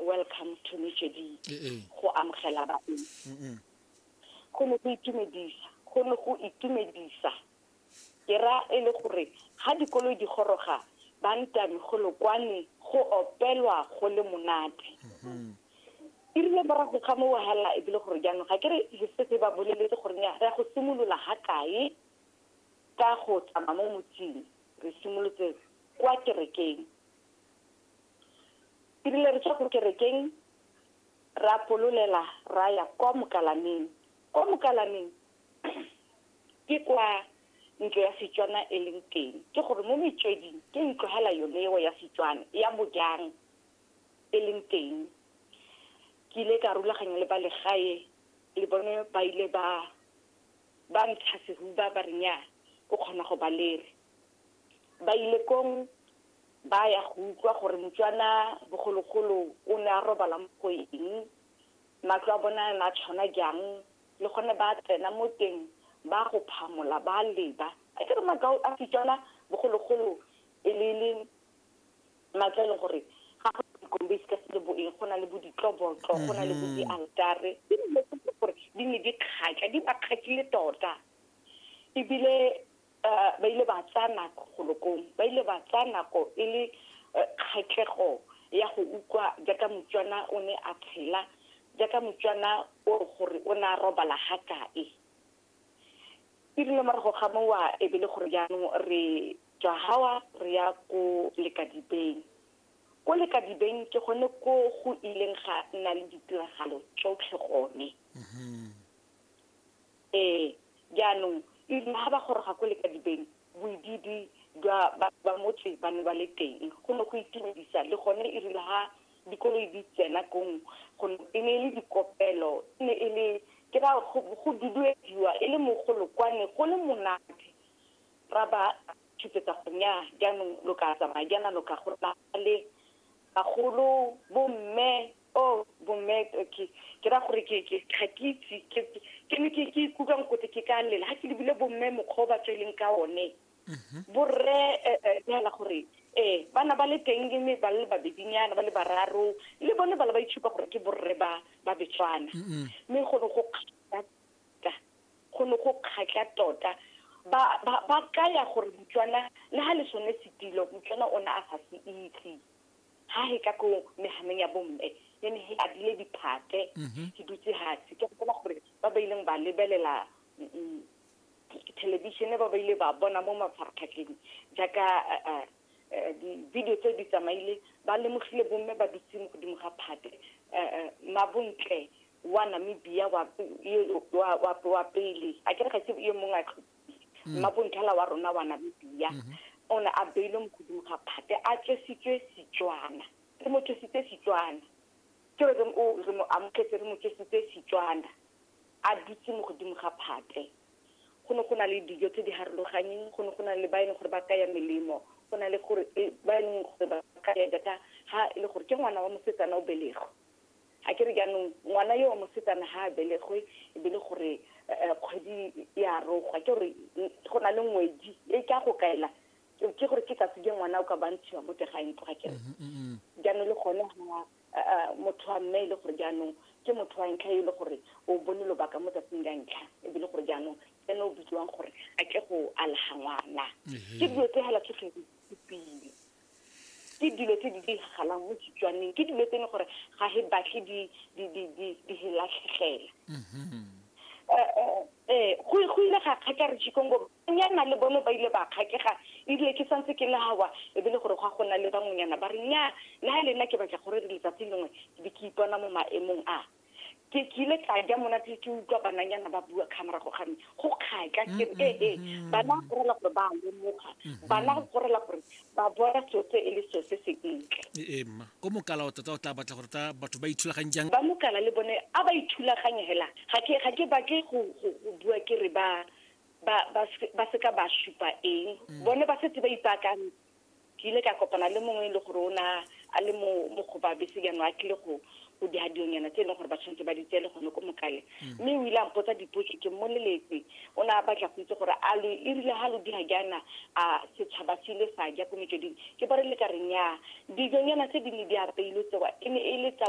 welcome to metsweding go amogela baeng go ne go itumedisa go ne go itumedisa ke ra e le gore ga dikoloi di goroga ba ntame go lokwane go opelwa go le monate e rile morago ga mo wahala e bile gore jaanong ga ke re setse ba boleletse gore ya go simolola ga kae ka go tsamaya mo motsing re simolotse kwa kerekeng e rile re tswa ko kerekeng ra pololela ra ya kwa mokalaneng kwa mokalaneng ke kwa ntlo ya setswana e leng teng ke gore mo metsweding ke ntlo hela yone eo ya setswana ya bojang e leng teng ke ile ka rulaganya le ba legae le bone ba ile ba ba ntsha sehuba ba re nyaa o kgona go ba lere bailekong ba ya go utlwa gore motswana bogologolo o ne a robala mo go eng matlo a bona na tshwana jang le gone ba tsena mo teng ba go phamola ba leba a ke re makao a setswana bogologolo e le le matlo e leng gore ga go dikombesi ka se le boeng go na le bo ditlobotlo go na le bo dialtare ke dilo gore di ne di kgatla di ba kgatlile tota ebile uh, ba ile ba tsaya nako golokong ba ile ba tsaya nako e le uh, kgatlhego ya go utlwa jaaka motswana o ne a tshela jaaka motswana o gore o ne a robala ga kae e rile morago ga mowa e be le gore jaanong re tswa gawa re ya ko lekadibeng ko lekadibeng ke gone ko go ileng ga nna le ditiragalo tsotlhe gone mm-hmm. Ee, jaanong ebile ga ba goroga ko lekadibeng, boidiidi jwa batho ba motse ba ne ba le teng. Go ne go itumedisa le gone erile ga dikoloi di tsena kong go e ne e le dikopelo, e ne e le ke ra go duduediwa e le mogolo kwa ne go le monate. Ra ba tshupetsa gore nnyaa jaanong lo ka tsamaya jaana lo ka go nna le bagolo, bomme, oh bomet okay ke ra gore ke ke ga ke itse ke ke ne ke ke ikutlwa nkote ke ka lela ga ke lebile bomme mokgwa o ba tsweleng ka one mhm. borre eh, eh, neela gore ee bana ba le teng le me ba le babedinyana ba le bararo le bone ba le ba itshupa gore ke borre ba ba betswana mme go ne go kgatla tota, go ne go kgatla tota ba ba ba kaya gore motswana le ha le sone setilo motswana o ne a sa se itse ha he tla ko mehanong ya bomme ne ne he abile diphate mhm. ke dutse hatsi ke gopola gore ba ba ileng ba lebelela mm, mm, thelebišene ba ba ile ba bona mo mafaratlhatlheng jaaka eh, eh, eh, di-video tseo di tsamaile ba lemogile bomme ba dutse mo godimo ga phate mabontle wa namibia wa pele a ke re ga se yo mongwe mm. mmabonthala wa rona wa namibia mm-hmm. o ne a beilwe mo godimo ga phate a tswesitswe setswana re mo tswesitse setswana ke re re mo amogetse re mo tswesitse setswana a dutse mo godimo ga phate go ne go na le dijo tse di harologanyeng go ne go na le ba e leng gore ba kaya melemo go na le gore e, ba e leng gore ba kaya data ga e le gore ke ngwana wa mosetsana o belego A ke re jaanong ngwana yo wa mosetsana ga a belegwe e be le gore kgwedi e a rogwa, ke gore go na le ngwedi e ka go kaela ke gore ke tsatsi je ngwana o ka bantshiwa mo tega ntlo ga kere jaanong le gone ga motho wa mme e le gore jaanong ke motho wa ntlha e le gore o bone lobaka mo tsatsing la ntlha e be le gore jaanong ene o bitsiwang gore a tle go alaga ngwana ke dilo tse fela tsotlhe di pile ke dilo tse di diragalang mo setswaneng ke dilo tse ne gore ga he batle di di di di di he latlhegela mm-hmm. eh, eh, eh, go go ile ga kgaka re chikongo nyana le bone ba ile ba kgakega ebile ke santse ke lawa e bile gore go a gona le bangwenyana ba re nya na le nna ke batla gore re letsatsi lengwe ke be ke ipona mo maemong a ke ke ile ka ja monate ke utlwa bananyana ba bua kga morago ga me go kgatla ke re ee ee bana go gorela gore ba lemoga bana go gorela gore ba bona seo se e le seo se se ntle ee mma ko mokala o tota o tla batla gore ta batho ba ithulaganye jang ba mokala le bone a ba ithulaganye hela ga ke ga ke batle go go go bua ke re ba ba ba se- ba seka ba supa eng bone ba setse ba ipaakantse ke ile ka kopana le mongwe e le gore o na a le mo mokgoba bese jaanong a tlile go go dihadionyana tse e leng gore ba tshwanetse ba di tseye le gone ko mokale mm. mme o ile a mpotsa dipotso ke mmoleletse o ne a batla go itse gore a lo e rile ga lo diga jaana a setšhaba se ile sa ja ko metsweding ke ba re le ka reng ya dijonyana tse di ne di apeilwe tsewa e ne e le tsa